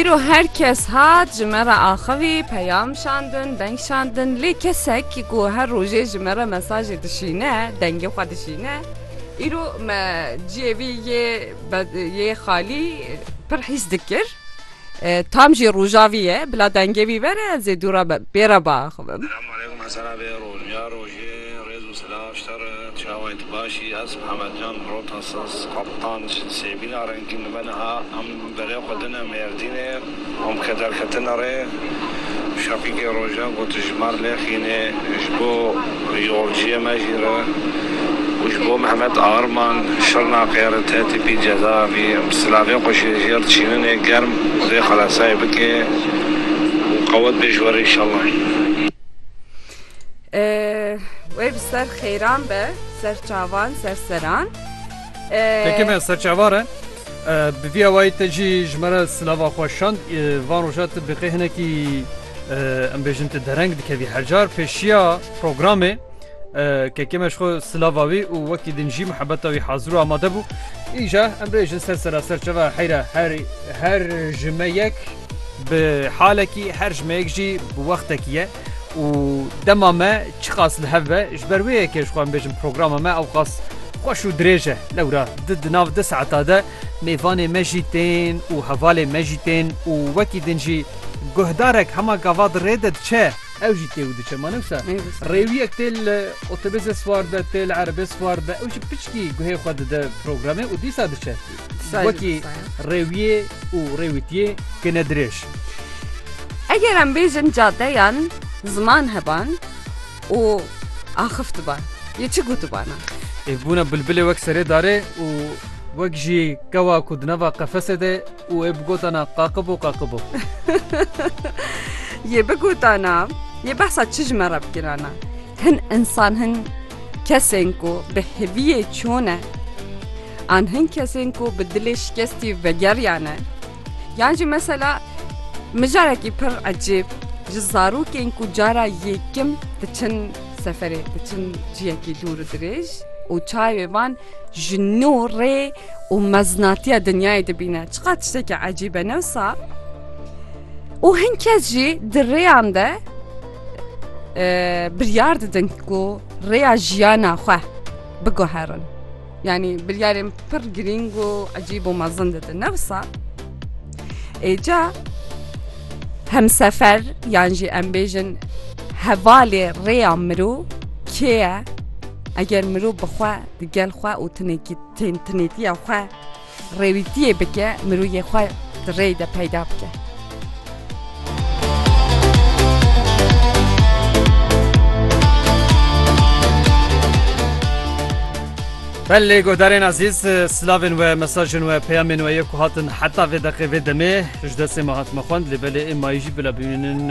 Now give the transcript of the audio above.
Îro her kes hat ji me re axivî, peyam şandin, deng şandin lê kesek ku her rojê ji me re mesajê dişîne, dengê xwe dişîne îro me ciyê vî yê yê xalî pir hîs dikir. Tam jî rojavî ye bila dengê wî vere ez ê dû re bê re biaxivim. Hêzû silav ji te re, çawên te baş î, ez Mihemed Can Rota Siz, Kaptan ji Sêbîna Rengîn dibe niha em berê xwe dine Mêrdînê û em ke derketine rê şepîgê rojan ku tu ji me re lêxînê ji bo yolciyê me jî re û ji bo Mihemed Arman Şirnaqê re te tîpî ceza avî em silavê xwe ji jêr diçîninê germ xwedê xelesayê bike û qewet bê ji we re înşallah. Wê bi ser xêran be serçavan serseran. Peki me serçavar e? Bi vî awayî te jî ji me re silava xwe şand van roja tu biqê hinekî em bêjin tu dereng dikevî hercar pêşiya programê kekê me ji xwe silava wî û wekî din jî mihebeta wî hazir û amade bû. Îja em bêjin ser sera serçava heyra her her ji me yek bi halekî her ji me yek jî bi wextekî ye. û dema me çiqas li hev be ji ber wê yekê jixwe em bêjin programa me ewqas xweş û dirêj e lewra di di nav di saeta de mêvanê me jî tên û hevalê me jî tên û wekî din jî guhdarek hema gava di rê de diçe ew jî tê û diçe ma ne wisa rêwiyek tê li otobêzê siwar be tê li erebê siwar be ew jî piçkî guhê xwe dide programê û dîsa diçe. Wekî rêwiyê û rêwîtiyê kine dirêj. Eger em bêjin cadeyan ziman heban û axif diban yê çi gû dibana? Ê bûna bilbilê wek serê darê û wek jî kewa ku di nava qefesê de û ê bi gotana qaqibo qaqibo. Yê bi gotana yê behsa çi ji me re bikirana? Hin insan hin Kesên ku bi hêviyê çû ne, an hin kesên ku bi dilê şikestî vegeriyane, yan jî mesela mijarekî pir ecêb ji zarokên ku cara yêkim diçin seferê, diçin ciyekî dûr û dirêj û çavê van ji nû rê û meznatiya dinyayê dibîne. Çiqas tiştekî ecîbe ne wisa? Û hin kes jî di rêyan de, biryar didin ku rêya jiyana xwe biguherin. Yani biryarên pir girîng û ecîb û mezin didin newsa êca hemsefer yan jî em bêjin hevalê rêya mirov kê ye eger mirov bixwe di gel xwe û tinekî tên tinêtiya xwe Rêwîtiyê bike mirûyê xwe di rêy de peyda bike. Belê godarên ezîz silavên we mesajên we peyamên we yê ku hatin heta vê deqê vê demê ji destê me hatime xwend lê belê ê mayî jî bila bimînin